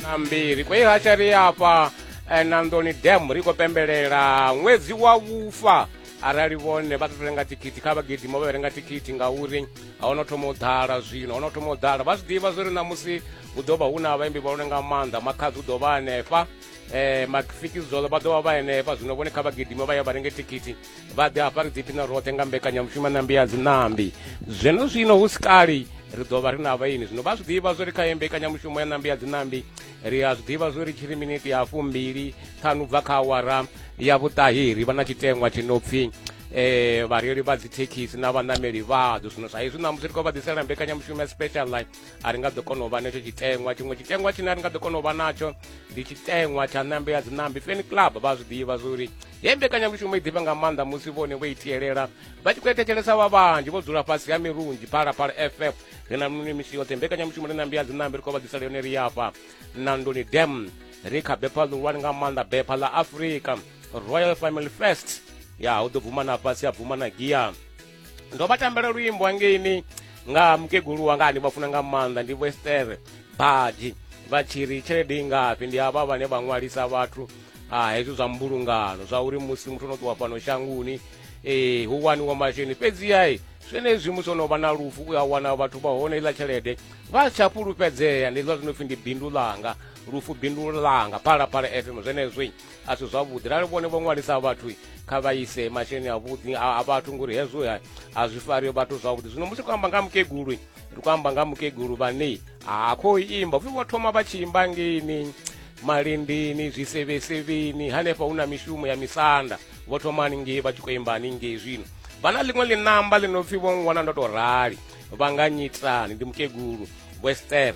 na mbili kwa hiyo hatari hapa eh, na ndoni dam riko pembelela ṅwedzi wa vhufa arali vhone vha ṱoto renga tikiti kha vhagidimo vha renga tikiti ngauri a ho no thoma u ḓala zwino ho no thoma u ḓala vha zwi ḓivha zwo ri ṋamusi hu ḓo vha hu na vhaimbi vha lone nga maanḓa makhadzi u ḓo vha hanefha um mafikizolo vha ḓo vha vha henefha zwino vhone kha vhagidimo vha ya vha renge tikiti vha ḓe hafha ri ḓiphina roṱhe nga mbekanyamushumo nambi ya dzinambi zwino zwino hu si kali ri ḓo vha ri na vhaini zwino vha zwi ḓivha zwo ri kha mbekanyamushumo ya nambi ya dzinambi ri a zwi ḓivha zwo ri tshiri miniti ya fumbili ṱhanu bva kha awara ya vhuṱahi ri vha na tshitengwa tshi no pfhi eh vhareili vha dzithekhisi na vhanameli vhadzo zwino sa izwi ṋamusi ri khou vha ḓisela mbekanyamushumo ya special line a ri nga ḓo kona u vha netsho tshitengwa tshiṅwe tshitengwa tshine a ri nga ḓo kona u vha natsho ndi tshitengwa tsha nambe ya dzinambi feni club vha zwi ḓivha zwo uri he mbekanyamushumo i ḓifha nga maanḓa musi vhone vho itielela vha tshi khou etethelesa vha vhanzhi vho dzula fhasi ha mirunzhi phalaphala ff ri na mini misi yoṱhe mbekanyamushumo ri na mbiya dzinambe ri khou vha ḓisela yone ri yafha na ndoni dam ri kha bepha ḽihulwane nga maanḓa bepha ḽa afrika royal family first ya hu ḓo bvuma na fhasi ya bvuma na gia ndo vha tambela luimbo hangeini nga mukegulu wanga ndi vhafuna nga maanḓa ndi wester baji vha tshi ri tshelede i ngafhi ndi avha vhane vha ṅwalisa vhathu a hezwo zwa mbulungano zwa uri musi muthu ono ṱuwa fhano shanguni um hu waniwa masheleni fhedziyai zwenezwi musi ono vha na lufu u a wana vhathu vha hone iḽa tshelede vha tsha fhulufhedzea ndi zwa zwino pfhi ndi bindu ḽanga lufu bindu langa phalaphala fm zwenezwi a si zwavhuḓi rali vhone vho ṅwalisa vhathu kha vha ise masheleni avhuḓi a vhathu ngori hezwo a zwi fari vhathu zwavhuḓi zwino musi khou amba nga mukegulu ri khou amba nga mukegulu vhane ha khou imba vho thoma vha tshi imba ngeini malindini zwisevhesevheni hanefha hu na mishumo ya misanda vho thoma haningei vha tshi khou imba haningei zwino vha na ḽiṅwe ḽinamba ḽi no pfhi vho ngwana ndo tou rali vha nga nyitani ndi mukegulu wester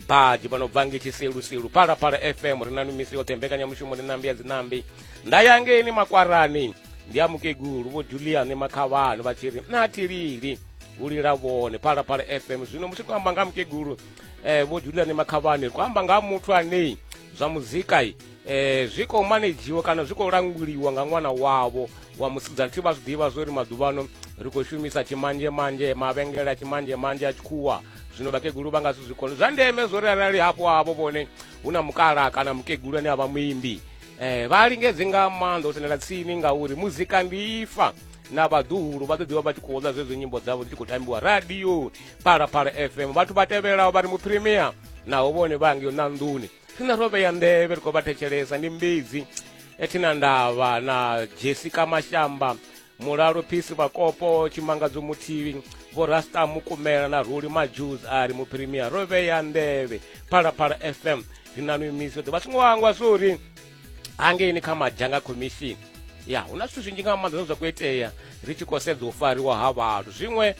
badi vha no bva nge tshiselusilu phalaphala fm ri na mimisi yoṱhe mbekanyamushumo ri nambi ya dzinambi nda ya ngeni makwarani ndi a mukegulu vho juliani makhavhani vha tshi ri na thilili u lila vhone phalaphala fm zwino musi amba nga mukegulu um eh, vho juliani makhavhani ku amba nga muthu anei zwa muzika um eh, zwi khou manejiwa kana zwi khou languliwa nga ṅwana wavho wa musidzana thi vha zwi ḓivha zwo ri maḓuvhano ri khou shumisa tshimanzhemanzhe mavhengele a tshimanzhemanzhe a tshikhuwa zwino vhakegulu vha nga si zwi kone zwa ndeme zwo ri arali hafho havho vhone hu na mukala kana mukegulu ane a vha muimbi um vha lingedze nga maanḓa u sendela tsini ngauri muzika ndi ifa na vhaḓuhulu vha ḓo ḓivha vha tshi khou ḽa zwezwo nyimbo dzavho dzi tshi khou tambiwa radio phalaphala fm vhathu vha tevhelaho vha ri mupremier naho vhone vha ngeo na nḓuni rine ro vhea nḓevhe ri khou vha thetshelesa ndi mbedzi ethina ndavha na jessica mashamba Mulalo Phisi Vhakopo, Tshimangadzo Muthivi, Vho Rasta Mukumela na Ruli Majuz a ri muphirimia ro vhea nḓevhe Phalaphala FM ri na mimisi ḓo vha songo hangwa zwo uri hangeini kha madzhanga khomishini ya hu na zwithu zwinzhi nga maanḓa zwine zwa khou itea ri tshi khou sedza u fariwa ha vhathu zwiṅwe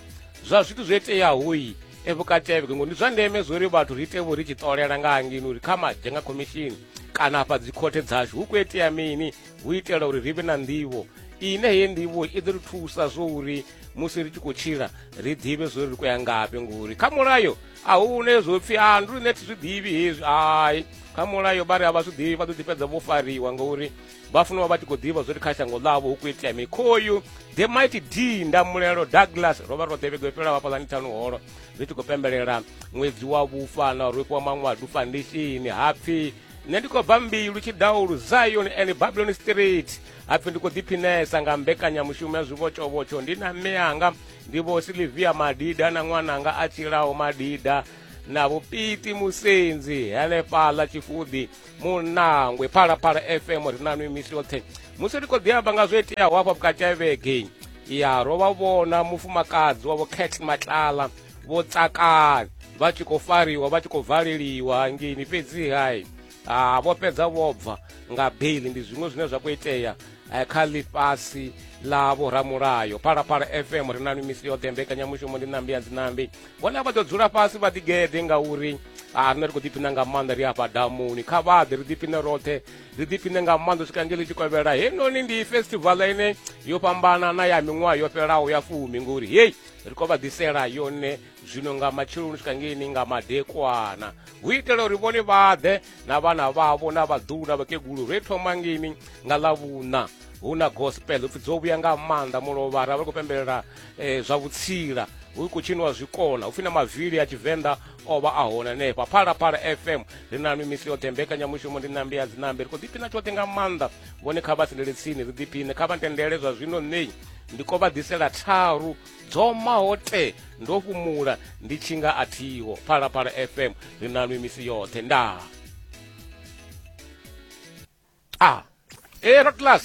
zwa zwithu zwo iteaho i e vhukatevheke ngori ndi zwa ndeme zwo uri vhathu ri ite vho ri tshi ṱolela nga hangini uri kha madzhanga khomishini kana afha dzikhothe dzashu hu khou itea mini hu itela uri ri vhe na nḓivho ine heyi nḓivho i ḓo ri thusa zwo uri musi ri tshi khou tshila ri ḓivhe zwo ri khou ya ngafhi ngori kha mulayo a hu hune zwo pfhi a ndi riṋe thi zwi ḓivhi hezwi hai kha mulayo vha ri a vha zwi ḓivhi vha ḓo ḓi fhedza vho fariwa ngori vha funa vha vha tshi khou ḓivha zwo ri kha shango ḽavho hu khou itea mikhoyu the might d ndamulelo douglas ro vha ro ḓevhego yo fhela vhafhaḽani ṱhanu holo ri tshi khou pembelela ṅwedzi wa vhufa na ro fhiwa maṅwadu fandishini hapfhi nṋe ndi khou bva mbilu tshidaulu zion and babylon street hapfi ndi khou ḓiphinesa nga mbekanyamushumo ya zwivhotshovhotsho ndi na mme anga ndi vho silivia madida na ṅwananga a tshilaho madida na vhupiti musenzi henefhaḽa tshifuḓi munangwe phalaphala fm ri na nwi misi yoṱhe musi ri khou ḓi amba nga zwo iteaho hafha vhukati ha vhege ya ro vha vhona mufumakadzi wavho cat matlala vho tsakala vha tshi khou fariwa vha tshi khou valeliwa hangeini fhedzihai ha vho fhedza vho bva nga beli ndi zwiṅwe zwine zwa khou itea eh, kha ḽifhasi ḽa vhoramulayo phalaphala fm ri na misi yoṱhe mbekanyamushumo ndi nambi ya dzinambi vhone vha ḓo dzula fhasi vha ḓigede ngauri a rine ri khou ḓiphina nga maanḓa ri afha damuni kha vhaḓe ri ḓiphine roṱhe ri ḓiphine nga maanḓa swika nge ḽi tshi kovhela heinoni ndi festival ine yo fhambana na ya miṅwaha yo fhelaho ya fumi ngori hei ri khou vha ḓisela yone zwino nga matsheloni u swika ngeini nga madekwana hu itela uri vhone vhaḓe na vhana vhavho na vhaḓulu na vhakegulu ri thoma ngeini nga ḽavhuṋa hu na gospel upfi dzo vhuya nga maanḓa mulovha ra vha ri khou pembelela um zwa vhutsila hu khou tshiniwa zwikona upfi na mavili a tshivenḓa o vha a hone hanefha phalaphala fm ri na mimisi yoṱhe mbekanyamushumo ndi nambi ya dzinambi ri khou ḓiphina tshoṱhe nga maanḓa vhone kha vha sendele tsini ri ḓiphine kha vha ntendele zwa zwino nṋei ndi ko vha ḓisela tharu dzo maho te ndo fhumula ndi tshi nga a thiho phalaphala fm ri na nwi misi yoṱhe ndaa a ah. e eh, rotlas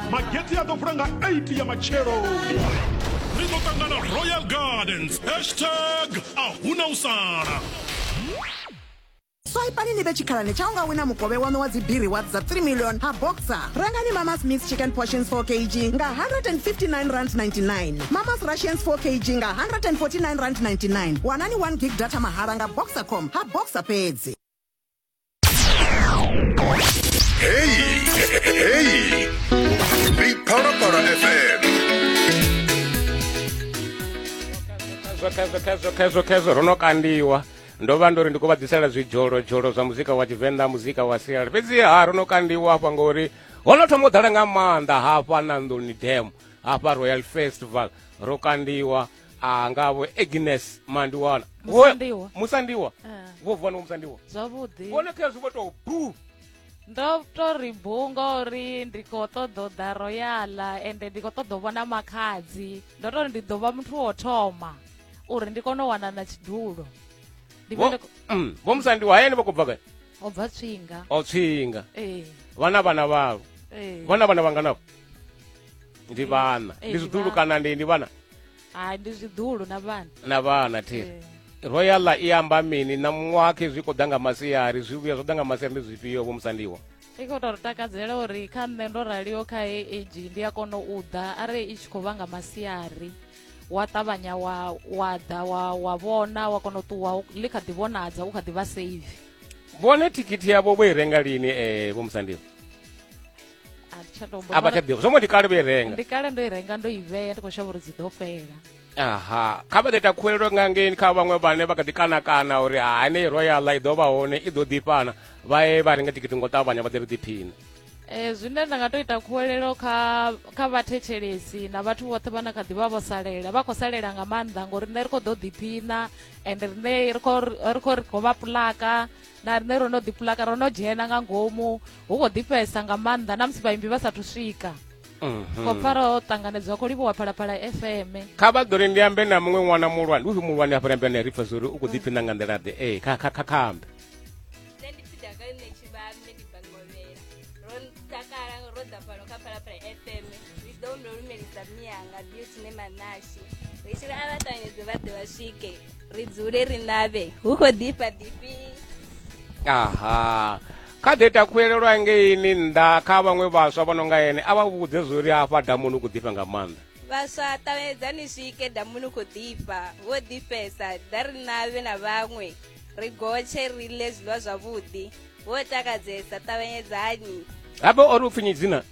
mageti a ḓo vula nga 8 ya matsheloni ri ḓo ṱangana royal gardens hashtag a huna u sala swaipani ni vhe tshikhalani tsha u nga wina mukovhe waṋu wa dzibiri wa dza 3 million ha boxer rengani mama smith chicken portions 4 kg nga 159 rand 99 mamas russians 4 kg nga 149 rand 99 wanani 1 gig data mahala nga boxercom ha boxer fhedzi khezwo khezwo ro no kandiwa ndo vha ndo ri ndi khou vha ḓisela zwidzholo dzholo zwa muzika wa tshivenḓa muzika wa siala fhedziha ro no kandiwa hafha ngori ho no thoma u ḓala nga maanḓa hafha na nḓuni dam hafha royal festival ro kandiwa a nga vho agnes mandiwana Musandiwa. Wo- musandiwa Ah, vho vuwa no musandiwa zwavhuḓi vhone kha zwi vho tou bu ndo to ri bu ngauri ndi khou ṱoḓa u ḓa royala ende ndi khou ṱoḓa u vhona makhadzi ndo to ri ndi ḓo vha muthu wo thoma uri ndi kone u wana na tshidulo ndi vhe Vho- ndi khou- Mm, vho musandiwa hayani vha khou bva gai o bva tswinga o tswinga ee vhana vhana vhavho ee vhona vhana vhanganavho ndi vhana Eh, ndi ndi zwiḓulu vhana. kana ndi ndi vhana hai ndi zwiḓulu na vhana na vhana thi Eh. royal i amba mini na muṅwakhe zwi khou ḓa nga masiari zwi vhuya zwo ḓa nga masiari ndi zwifhio vho musandiwa i khou tou takadzela uri kha nṋe ndo raliho kha he age ndi a kona u ḓa arali i tshi khou vha nga masiari wa ṱavhanya wa wa ḓa wa wa vhona wa kona u ṱuwa u- ḽi kha ḓi vhonadza u kha ḓi vha save vhone thikhithi yavho vho i renga lini um vho musandiwa a thi tsha tou a vha tsha ḓivha zwo ngo ndi kale vho i renga ndi kale ndo i renga ndo i vhea ndi khou shavha uri dzi ḓo fhela aha kha vha ḓo ita khuwelelo nga ngeni kha vhaṅwe vhane vha kha ḓi kanakana uri hani royala i ḓo vha hone i ḓo ḓifhana vha ye vha renga tikiti ngo ṱavhanya vha ḓi ri ḓiphina Eh, zwine nda nga to ita khuwelelo kha kha vhathetshelesi na vhathu vhoṱhe vhana kha ḓivha vho salela vha khou salela nga maanḓa ngori rine ri khou ḓo ḓiphina and rine ri khou ri khou ri khou vha pulaka na riṋe ro no ḓipulaka ro no dzhena nga ngomu hu khou ḓifhesa nga maanḓa na musi vhaimbi vha sathu swika mhm. khou pfara o ṱanganedzwa khou livhiwa phalaphala fm kha vha ḓo ri ndi ambe na muṅwe ṅwana muhulwane uyu muhulwane afha ambe na ri pfa zwa uri u khou ḓiphina nga nḓila ḓe ee kha kha kha kha ambe Mianga, Beauty, Nema, Nashi. Vishira abatanyezi bade bashike. ri dzule ri navhe hu khou ḓifha ḓifhi aha kha ḓe takhulelelwa ngeini nnḓa kha vhaṅwe vhaswa vho no nga ene a vha vhudze zwo ri hafha damuni u khou ḓifha nga maanḓa vhaswa ṱavhanyedzani swike damuni u khou ḓifha vho ḓifhesa ḓa ri navhe na vhaṅwe ri gotshe ri ḽe zwiḽiwa zwavhuḓi vho takadzesa ṱavhanyedzani habe o ri u pfinyi dzina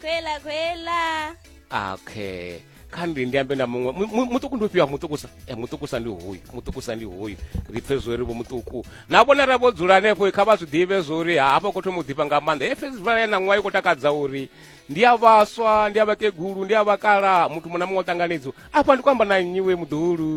khwela khwela okay kha ndi ndi ambe na muṅwe muṱuku ndi ufhio muṱukusa e muṱukusa ndi hoyu muṱukusa ndi hoyu ri pfe zwo ri vho muṱuku na vhona ra vho dzula hanefho kha vha zwi ḓivhe zwo uri hafha khou thoma u ḓifha nga maanḓa he festival ya naṅwaha i khou takadza uri ndi a vhaswa ndi a vhakegulu ndi a vhakala muthu muṅwe na muṅwe o ṱanganedzo afha ndi khou amba na nnyi we muḓulu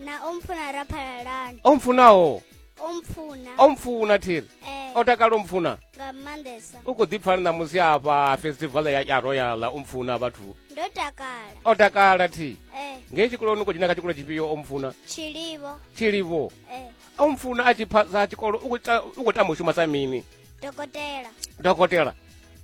na o mpfuna ra phalalana o mpfunaho omfuna omfuna thiri eh, o takala omfuna nga maanḓesa u khou ḓipfani ṋamusi afha festival ya ya royal omfuna vhathu ndo takala o takala thi eh, ngei tshikoloni u khou dzhena kha tshikolo tshifhio omfuna tshilivo tshilivo eh, omfuna a tshi phasa tshikolo u khou ta- u khou tamba u shuma sa mini dokotela dokotela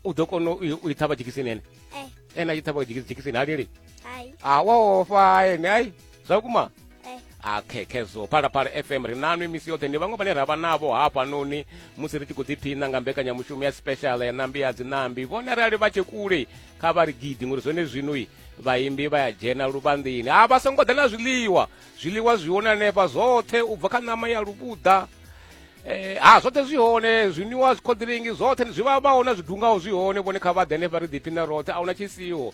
u ḓo kona u i- u i ṱhavha dzhekisini ene eh, ene a tshi ṱhavha dzheki- dzhekisini halili hai a wa ofa ene ai zwa kuma eh. a khekhezo phalaphala fm ri nanwi misi yoṱhe ndi vhaṅwe vhane ra vha navho hafhanoni musi ri tshi khou ḓiphina nga mbekanyamushumo ya special ya nambi ya dzinambi vhone arali vha tshe kule kha vha ri gidi ngori zwone zwinoi vhaimbi vha ya dzhena luvhanḓini a vha songo ḓa na zwiḽiwa zwiḽiwa zwi hone hanefha zwoṱhe u bva kha ṋama ya luvhuḓa Eh, ha zwoṱhe zwi hone zwiniwa zwikhodiringi zwoṱhe zwi vha vha hona zwidungaho zwi hone vhone kha vhaḓe henefha ri ḓiphina roṱhe a huna tshisiho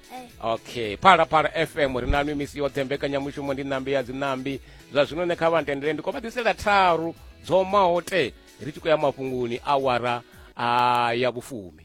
okay phala phala fm ri nanu misi yoṱhe mbekanyamushumo ndi ṋambi ya dziṋambi zwa zwino ne kha vha ntendele ndi khou vha ḓisela tharu dzo maho te ri tshi khou ya mafhungoni awara a ya vhufumi